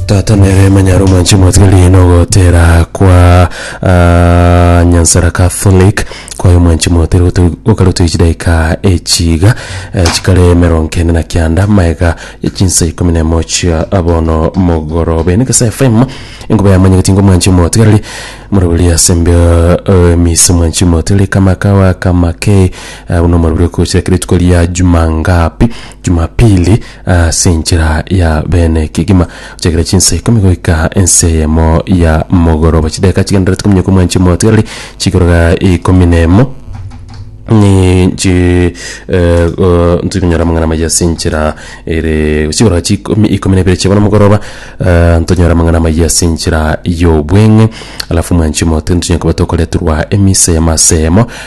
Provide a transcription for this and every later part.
Tata nere emanyare omwanchi omwatire riina ogotera kwa ah, nyansara catholic kwaye omwanchi mwatire gotu- gokaruta echidaika echiga eh, chikare emerongo kenda na kianda maega ya chinsa ikomi na emo chia abono mogoroba ene gesa fm enkoba yamanyegeti ngo omwanchi omwotigareri moroberi ase mbe eh, emisi omwanchi omwotigareri kama kawa kama ke eh, buna omoroberi okochira kera rituko ria juma ngapi jumapili Ase enchera ya bene kegima, gochakera chinsa ikomi goika ensa eyemo ya mogoroba, chideka chigendererete kominyoka omwanchi omotigareri chikoroga ikomi na emo ninchi eh, go- ntiri konyora amang'ana maya ase enchera ere chikoroga chikomi ikomi na ibere chia bono mogoroba eh, ntonyora amang'ana maya ase enchera y'obweng'e alafu omwanchi omotigareri ntonyora koba tokoreterwa emisa y'amasa eyemo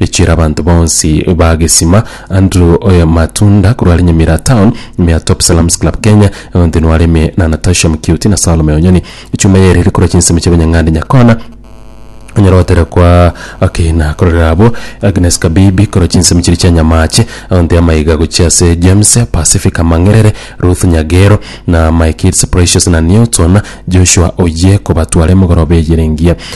Richire abanto bonsi ba Gesima, Andrew oye Matunda korwa are Nyamira Town, ime ya Top Salams Club Kenya, Eonthen ware ime na Natasha Mkiuti na Salome Onyoni. Echuma yaye eriri korwa chinsemo chia Banyang'ande Nyakona, onyare gotera kwa Akina kororera abwo, Agnes Kabibi korwa chinsemo chiria chia Nyamache, Eonthe Amaiga gochia ase James, Pacific Amang'erere, Ruth Nyagero na My Kids Precious na Newton, Joshua Oyie kobatwara emogoroba eye ere engiya.